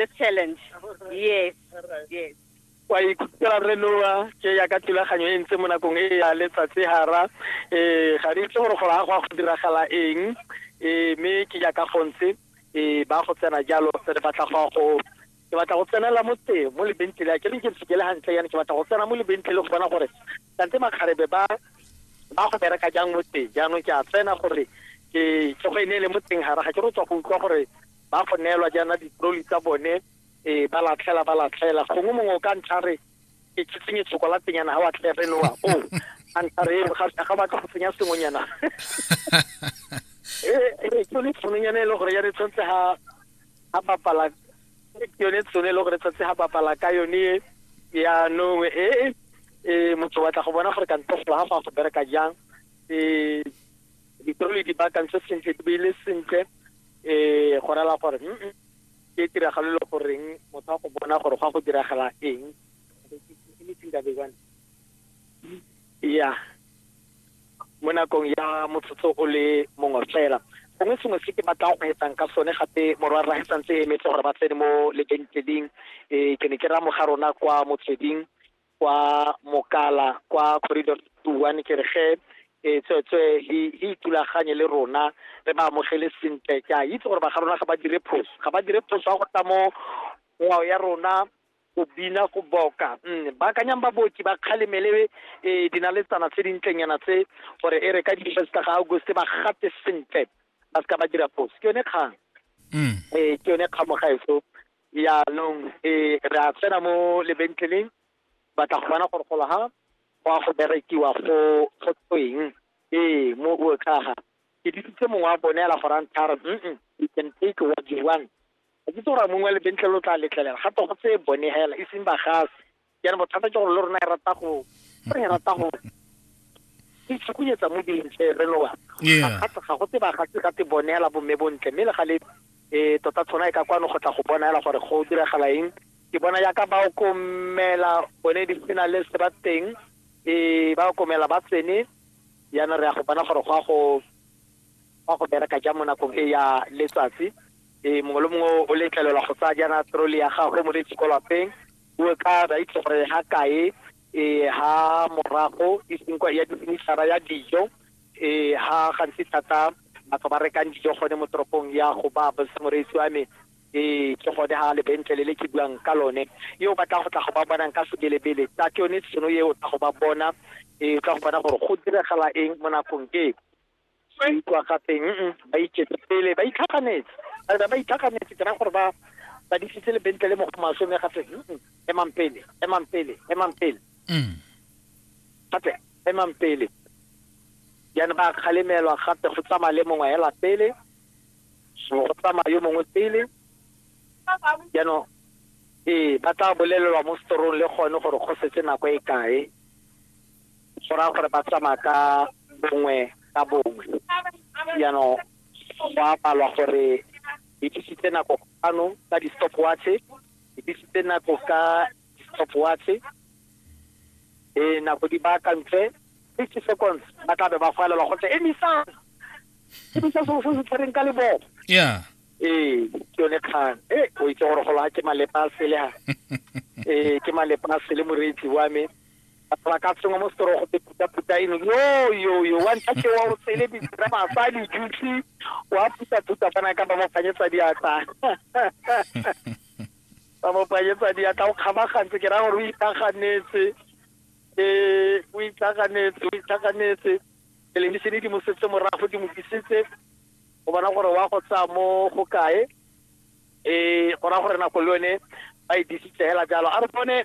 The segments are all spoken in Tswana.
the challenge yes yes wa ikutlwa re noa ke ya ka thulaganyo e ntse mo nakong e ya letsatsi hara um ga re itse gore go ya go a go diragala eng um mme ke ya ka gontse um ba go tsena jalo re batla go go ke batla go tsenela mo teng mo lebentlele ke re ke se kele hantle yana ke batla go tsena mo lebentlele go bona gore kante makgarebe ba ba go bereka jang mo teng jaanong ke a tsena gore ke ke go e ne le mo teng hara ga ke re tswa go utlwa gore ba go neelwa jaana ditroli tsa bone ee ba latlhela ba latlhela gongwe mongwe o ka ntlha re ke ke tsenye tshokolatenyana ga wa tlhe re noa o a ntlha re ga batla go tsenya sengwenyana ee ke yone tshononyana e le gore ya re tshwanetse ga a bapala ke yone tshone e le gore tshwanetse ga bapala ka yone yaanong ee ee motho batla go bona gore kantofo ga go a go bereka jang ee Dipeo le di baakantse sentle, di beile sentle um go rela gore mm ke tiragalo e le goreng motho a go bona gore go a go diragala eng anything that they want ya mo nakong ya motsotso o le mongwe fela gongwe sengwe se ke batlang go etsang ka sone gape morwa rra e santse e emetse gore ba tsene mo lebenkeleng um ke ne ke raya moga rona kwa motsweding kwa mokala kwa corridor one ke re ge e tswetswe he itulaganye le rona re ba amogele sentle ke a itse gore ba ga rona ga ba dire phoso ga ba dire phoso ya go tla mo ngwao ya rona go bina go boka mm, ba akanyang baboki ba kgalemele e dinaletsana tse dintlenyana tse gore e re ka di-first ga august ba gate sentle ba se ka ba dira phoso ke yone kgang mm. ee ke yone kgamogaeso Yaanong e re a tsena mo lebentleleng batla go bona gore go laga go a go berekiwa go go tsweng ee mo o tlhaga ke ditse mongwe wa bone la gorang tharo mm you can take what you want a ke tsora mongwe wa lebentlele o tla letlelela ga to go tse bone hela e seng ba gase jaanong bothata ke gore le rona e rata go re e rata go ke tshukunyetsa mo dintle re lowa ga go tse ba ga se ga te bonela bomme bontle mme le ga le um tota tshwana e ka kwano go tla go bona fela gore go diragala eng ke bona yaka ba okomela bone di sena le se ba teng um ba okomela ba tsene yana re ya go bona gore go a go wa go bereka ja mo nakong e ya letsatsi um mongwe le mongwe o letlelelwa go tsaya jaana trole ya gagwe mo le tshiko lapeng O ka ba itse gore ha kae e ha morago e seng kwa ya disemisara ya dijo e ha gantsi thata batho ba rekang dijo gone mo toropong ya go ba botsa moreetsi wa me e ke gone ha lebentlele le ke buang ka lone e o batla go tla go ba bonang ka sebelebele tla ke yone tšhono e o tla go ba bona e tla go bona gore go diragala eng mo nakong e ba ikwa ga teng ba iketse pele ba itlhaganetse ba re ba itlhaganetse ke ra gore ba ba disitse le bentle le mo go maswe mme ga teng emang pele emang pele emang pele Mm. ga teng emang pele jaanong ba kgalemelwa gape go tsamaya le mongwe hela pele go tsamaya yo mongwe pele jaanong ee ba tla bolelelwa mo setorong le gone gore go setse nako e kae go raya gore ba tsamaya ka bongwe ka bongwe jaanong go a palwa gore di tlisitse nako ano ka di-stop watche di tlisitse nako ka di-stop watche e nako di baakantswe fifty seconds ba tla be ba falelwa go tle emisang emisa seo se se tshwereng ka leboo yeah ee ke yone kgang e o itse gore golo ga ke malepa a sele ga ee ke malepa a sele moreetsi wa me batho ba ka sengwa mo setorogo te phutaphuta eno yoyoyo wa ntlha ke wa o tsele ditsira masa dithusi wa phutaphuta kana ka ba mo phanyetsa diatla ba mo phanyetsa diatla o kgabagantse ke ra gore o itlaganetse um o itlaganetse o itlaganetse televisene di mo setse morago di mo disitse o bona gore wa go tsaya mo go kae um go raya gore nako le yone ba e disitse fela jalo a re bone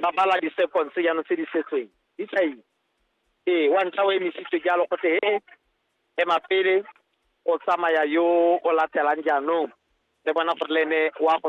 ba bala di-seconds jaanong tse di setseng di tla itse ee wa ntlha o emisitswe jalo go te he ema pele o tsamaya yo o latelang jaanong le bona gore le ene wa go